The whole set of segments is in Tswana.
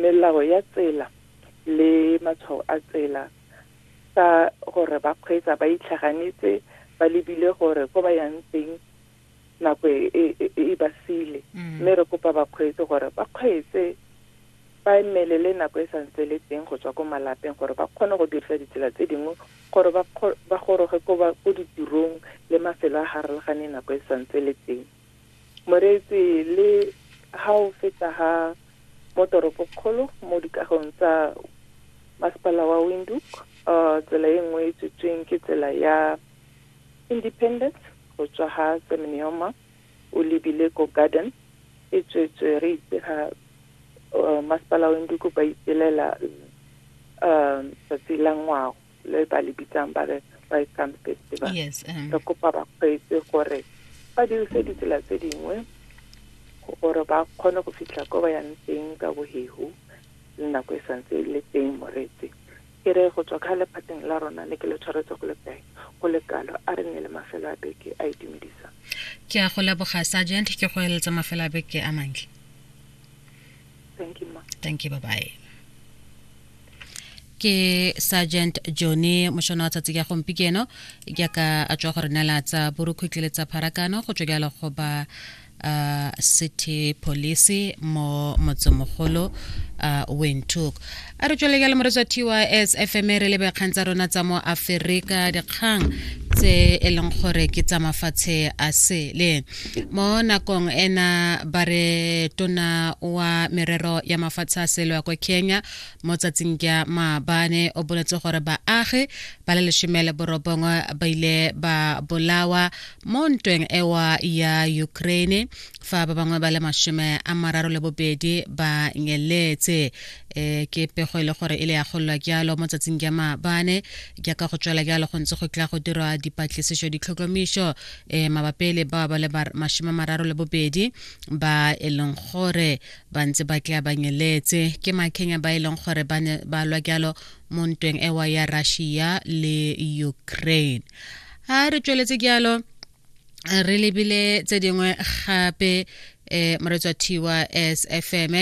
melao ya tsela le matshwao a tsela ka gore ba kgweetsa ba itlhaganetse ba lebile gore ko ba yang teng nako e, e, e, e ba sile mm. mme re kopa bakgweetsi gore ba kgweetse ba emelele nako e santse le teng go tswa ko malapeng gore ba kgone go dirisa ditsela tse dingwe gore ba goroge ko ditirong le mafelo a harologane nako e santse le teng Moreetsi, Le ha o feta ha mo toropokgolo mo dikagong tsa masepala wa Windhoek, uh, tsela e nngwe e tswetsweng ke tsela ya Independence go tswa ha Semnioma o lebile ko Garden e tswetswe re itse ga uh, masepala wa Windhoek ba ipelela uh, tsatsi la ngwago. le ba le bitsang ba re Welcome Festival yes, um. re kopa bakgweetsi gore ba dirise ditsela tse dingwe gore ba kgone go fitlha ko ba yang teng ka bohegu le nako e santse e le teng moretse ke re go tswa ka lephateng la rona le ke le tshwaretse go le kae go le kalo a re ne le mafelo a beke a itumedisa ke a go leboga sergeant ke go eletsa mafelo a beke a mantle thank you ma thank you bye bye ke sergeant johnny mošono wa tsatsi ka gompikeno jaaka a tswa go re nela tsa borukhutlhi le tsa pharakano go tswa jalo go ba uh, city police mo motsemogolo uh, windhoek a re tswelele le moretsa tys fm re lebe kgang tsa rona tsa mo aferika dikgang tse e leng gore ke tsa mafatshe a sele mo nakong ena ba re tona wa merero ya mafatshe a sele wa kwa kenya mo tsatsing ya maabane o boletse gore baagi ba le lesome le borobongwe ba ile ba bolawa mo ntweng ewa ya ukraine fa ba bangwe ba le masome a mararo le bobedi ba nyeletse eh ke pego e le gore e le ya golwa jalo mo tsatsing ja maabane jaaka go tswela jalo go ntse go tla go dirwa dipatlisiso ditlhotlhomiso eh mabapi le ba ba le mashima mararo le bobedi ba e leng gore ba ntse ba tla ba nyeletse ke makenya ba e leng gore ba ne ba lwa jalo mo ntweng ewa ya Russia le Ukraine ha re tsweletse jalo re lebile tse dingwe gape eh moretswa thiwa as fm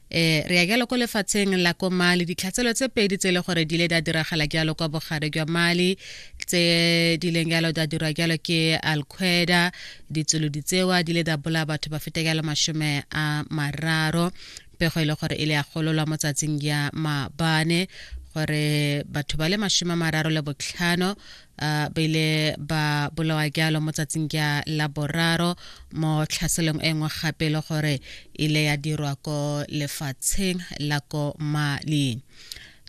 eh re ya jalo ko lefatsheng la ko mali ditlhatselo tse pedi tse e le gore di ile da diragala jalo kwa bogare jwa mali tse di leng jalo da dirwa jalo ke alqueda ditsolo ditsewa di ile da bola batho ba feta jalo mashome a mararo pego e le gore e le ya gololwa mo tsatsing ya mabane gore batho ba le mashome a mararo le botlhano uh, ba ile ba bolawa jalo mo tsatsing ja la boraro mo tlhaselong e nngwe gape e le gore ile ya dirwa ko lefatsheng la ko mali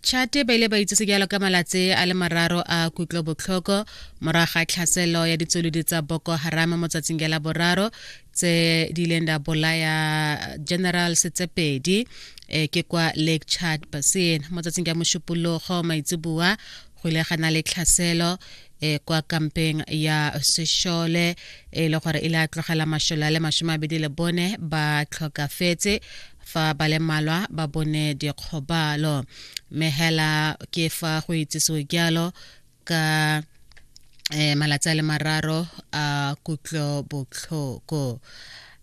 chate ba ile ba itsese jalo ka malatsi a le mararo a kutlo botlhoko moraga tlhaselo ya ditsolodi tsa boko harame mo tsatsing ja la boraro tse di ileng da bolaya general setsepedi e ke kwa lake chad basin mo tsatsing ja mošupologo maitseboa go ile ga na le tlhaselo e kwa kampeng ya sešole e le gore e le a tlogela mašole a le masome abedi le bone ba tlhokafetse fa ba le malwa ba bone dikgobalo mme hela ke fa go itsisiwe jalo ka um malatsi a le mararo a kutlo botlhoko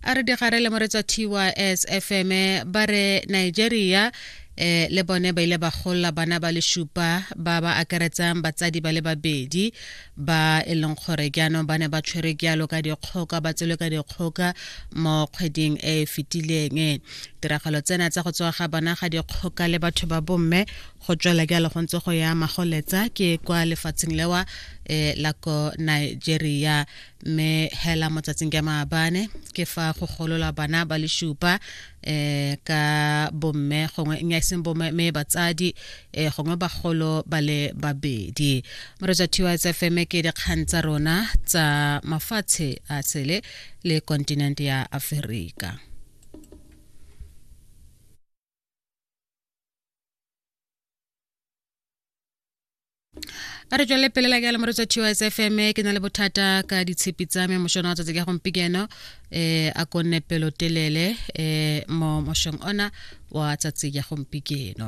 a re digare le moretswa tys fm ba re nigeria eh le bone ba ile ba golla bana ba le shupa ba ba akaretsang batsadi ba le babedi ba e leng gore jaanong ba ne ba tshwere jalo ka dikgoka ba tswele ka dikgoka mo kgweding e e fetileng tiragalo tsena tsa go tswa ga bana ga dikgoka le batho ba bomme go tswela jalo go ntse go ya magoletsa ke kwa lefatsheng lewa eh, la ko nigeria mme hela mo tsatsing ka maabane ke fa go golola bana ba le shupa eh ka bomme gongwe nya seng bomme me batsadi eh gongwe bagolo ba le babedi moreja thiwa tsa fm ke dikgang tsa rona tsa mafatshe a tsele le continent ya Afrika a re tswelele pele la ke alamore tsa tws fm ke na le bothata ka ditshepi tsa me mošono wa tsatsi ka gompieno um a konne pelotelele um mo mošong ona wa tsatsi ya gompieno